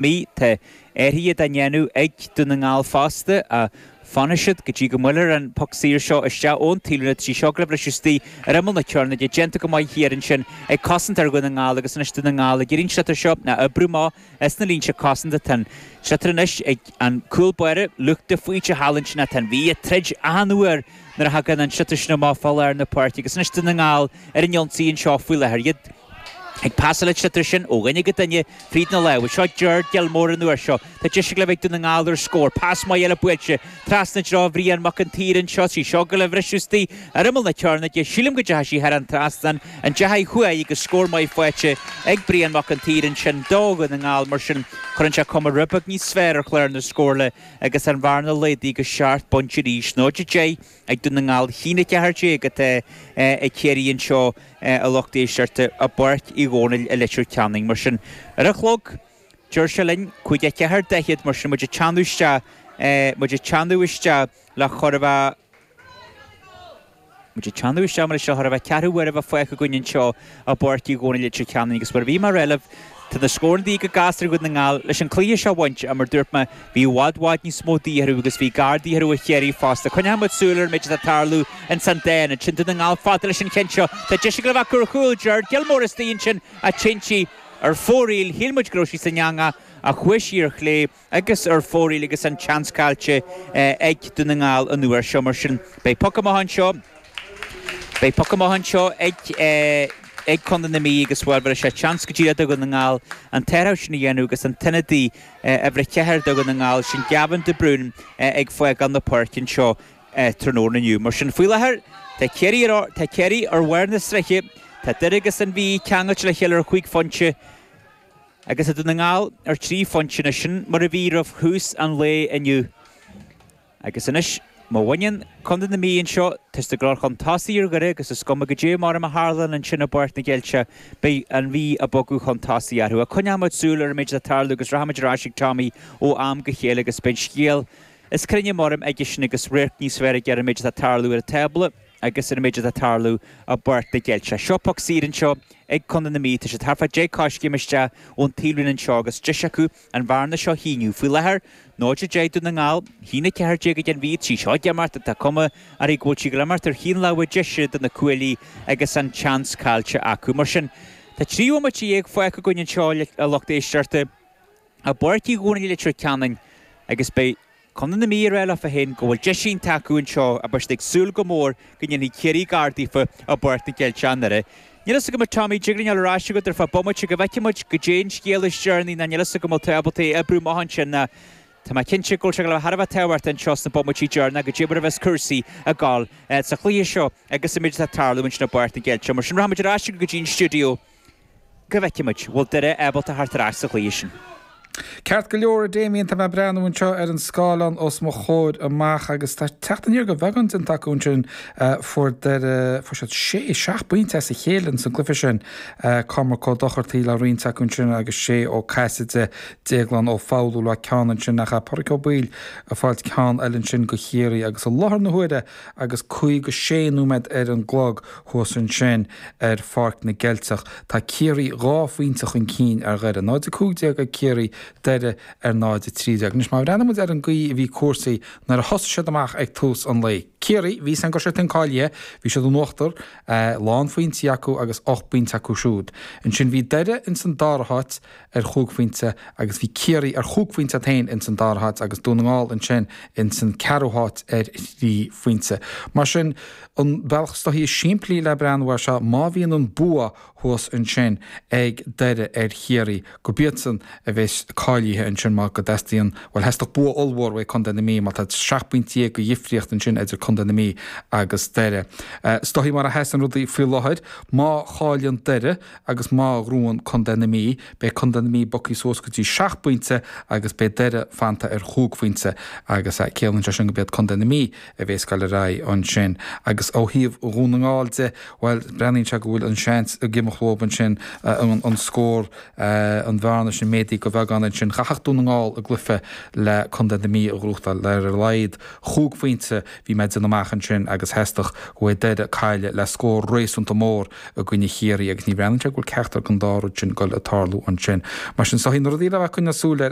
Mí, Tá athruithe á ndéanamh ag Dún na nGall fosta. Ach fanfaidh siad go dtí go mbuailfear an poc saor seo isteach ón taobhlíne tá sí seo ag gabháil a bhriseadh istigh ar imeall na cearnóige déanta go maith thiar ansin ag cosantóir Dhún na nGall agus anois Dún na nGall ag iarraidh an sliotar seo a oibriú amach as na línte cosanta tá an sliotar anois ag an cúl báire Luke de Faoite thall ansin ach tá an Mhí ag troid achan uair nuair a thagann an sliotar sin amach fá lár na páirce agus anois Dún na nGall ar an ionsaí anseo faoi láthair iad Ag passáil an tsliotair sin ó dhuine go duine fríd na lámha. Seo Ger Gilmore an uair seo. Tá deis ag gabháil a bheith ag Dún na nGall ar scór. Pas maith eile buailte trasna i dtreo Bhrian Mac an tSaoir anseo. Tá sí seo ag gabháil a bhriseadh istigh ar imeall na cearnóige. Sílim go dteachaidh sí thar an trasnán an dteachaidh chuaigh agus scór maith faighte ag Brian Mac an tSaoir ansin do Dhún na nGall. Mar sin cuireann sé cuma rud beag níos fearr ar chlár na scórtha agus an bhearna laghdaithe go seacht bpointe arís, 0-10. Ag Dún na nGall, 1-14 atá ag Ciarraí anseo a lucht éisteachta i bPáirc Uí Dhónaill i Leitir Ceanainn. Mar sin, ar an chlog, deir sé linn, caoga a ceathair, daichead, mar sin, muid ag teannadh isteach, muid ag teannadh isteach le chóir a bheith, muid ag teannadh isteach, mar sin, le chóir a bheith, ceathrú uaire a bheith fágtha againn anseo. i bPáirc Uí Dhónaill i Leitir Ceanainn agus mar a bhí mé a rá libh tá na scóranna de dhíth go gasta ar Dhún na nGall leis an cluiche seo a bhaint, ach mar dúirt mé, bhí i bhfad, bhfad níos mó de dhíth orthu agus bhí gar de dhíth orthu ó Chiarraí fosta. Coinneoidh muid súil ar an méid atá ag tarlú ansin. Déanta ansin Dún na nGall fada leis an cheann seo. Tá deis ag gabháil a bheith ar chúl Gerard Gilmore istigh ansin ach imithe ar fóraoil, shíl muid go raibh sí san eangach ach chuaigh sí ar chlé. agus ar fóraoil agus an tseans caillte ag Dún na nGall an uair seo. Mar sin, beidh poc amach anseo, beidh poc amach anseo ag Contae na Mí agus bhéarfaidh sé seans go díreach do Dhún na nGall an t-athrach sin a dhéanamh agus an t-ionadaí uimhir a ceathair do Dhún na nGall, sin Gavin de Brún ag fágáil na páirce anseo tráthnóna inniu. Mar sin, faoi láthair, tá Ciarraí, tá Ciarraí ar bharr na sraithe, tá Doire agus an Mhí ceangailte le chéile ar chúig phointe, agus i Dún na nGall ar trí phointe nó sin mar a bhí roimh thús an lae inniu. Agus anois, má bhaineann Contae na Mí anseo tá siad ag dul chun tosaigh ar Dhoire agus is cuma caidé mar a tharlann ansin i bPáirc na gCeilteach, beidh an Mhí ag bogadh chun tosaigh orthu. Ach coinneoidh muid súil ar an méid atá ag tarlú agus rachaidh muid ar ais ag Tommy ó am go chéile agus beidh an scéal níos cruinne mar aigesean agus radharc níos fearr aige ar an méid atá ag tarlú ar an tábla. Agus ar an méid atá ag tarlú, i bPáirc na gCeilteach. Seo poc saor anseo ag Contae na Mí. Tá sé thart fá deich coiscéim isteach ón taobhlíne anseo agus deis acu an bhearna seo a shíneadh. Faoi láthair, 0-10 Dún na nGall. 1-14 don Mhí tá sí seo ag imeacht ach tá cuma air go bhfuil sí ag gabháil a imeacht ar thaobh na láimhe deise de na cuaillí agus an tseans caillte acu. Mar sin, tá trí bhomaite dhéag fágtha againn anseo, a lucht éisteachta, i bPáirc Uí Dhomhnaill i Leitir Ceanainn agus beidh. contae na Mí ag rá leofa féin go bhfuil deis inteacht acu anseo ach beidh siad ag súil go mór go ndéanfaidh Ciarraí gar daofa i bPáirc na gCeilteach i nDoire. Níl fhios agam a Tommy, dtig linn dul ar ais chugat ar feadh bomaite go bhfeicfidh muid, goidé an scéal is deireanaí ná níl fhios agam an bhfuil tú ábalta oibriú amach ansin ná tá mé cinnte go bhfuil sé ag dul a bheith thar a bheith tábhachtach anseo sna bomaití deireanacha goidé mar a bheas cúrsaí ag dul sa chluiche seo agus an méid atá ag tarlú ansin i bPáirc na gCeilteach. Mar sin, rachaimid ar ais go dtí an stiúideo. go bhfeicfidh muid bhfuil Doire ábalta theacht ar ais sa chluiche sin? Ceart go leor, a Damien, tá mé ag breathnú anseo ar an scáileán os mo chomhair amach agus tá teacht aniar de bheagán déanta acu ansin. Fuair Doire, fuair siad sé, seacht bpointe as a chéile ins an gcluiche sin. Cormac Ó Dochartaí le roinnt acu ansin agus Sé Ó Caiside, Déaglán Ó Foghlú le ceann ansin ach Pádraig Ó Baoill ag fáilt ceann eile ansin do Chiarraí agus i láthair na huaire, Agus caoga sé nóiméad ar an gclog thuas ansin ar Pháirc na gCeilteach, tá Ciarraí dhá phointe chun cinn ar Dhoire, 0-15 ag Ciarraí, Doire ar 0-13. Anois, má bhreathnaimid ar an gcaoi a bhí cúrsaí nuair a thosaigh siad amach ag tús an lae, Ciarraí, bhí fhios againn go raibh siadsan cáilithe, bhí siad in uachtar, lán phointí acu agus ocht bpointe acu siúd. Ansin bhí Doire ins an dara háit, ar chúig phointe agus bhí Ciarraí ar chúig phointe iad féin ins an dara háit agus Dún na nGall ansin ins an ceathrú háit ar thrí phointe. Mar sin, an bealach is dóichí is simplí le breathnú air seo, má bhíonn an bua thuas ansin ag Doire ar Chiarraí, go b'iadsan a bheas cáilithe ansin mar go dteastaíonn, bhuel, theastódh bua ollmhór uaidh contae na Mí mar tá seacht bpointe dhéag de dhifríocht ansin idir contae na Mí agus Doire. Is dóichí mar a sheasann rudaí faoi láthair, má chailleann Doire, agus má ghnóthaíonn contae na Mí, beidh contae na Mí bogthaí suas go dtí seacht bpointe agus beidh Doire fanta ar chúig phointe agus ciallaíonn sé sin go b'iad contae na Mí a bhéas ag dul ar aghaidh ansin agus ó thaobh Dhún na nGall de, bhuel breathnaíonn sé go bhfuil an seans ag imeacht leob ansin an scór, an bhearna sin, méadaithe de bheagán ansin. Chaithfeadh Dún na nGall a gcluiche le contae na Mí a ghnóthachtáil le ar a laghad chúig phointe, bhí mé ag déanamh amach ansin agus theastódh go bhféadfadh Doire cailleadh le scór réasúnta mór, i gcoinne Chiarraí agus ní bhreathnaíonn sé go bhfuil ceachtar den dá rud sin ag dul ag tarlú ansin. Mar sin, is dóichí na rudaí le bheith ag coinneáil súil ar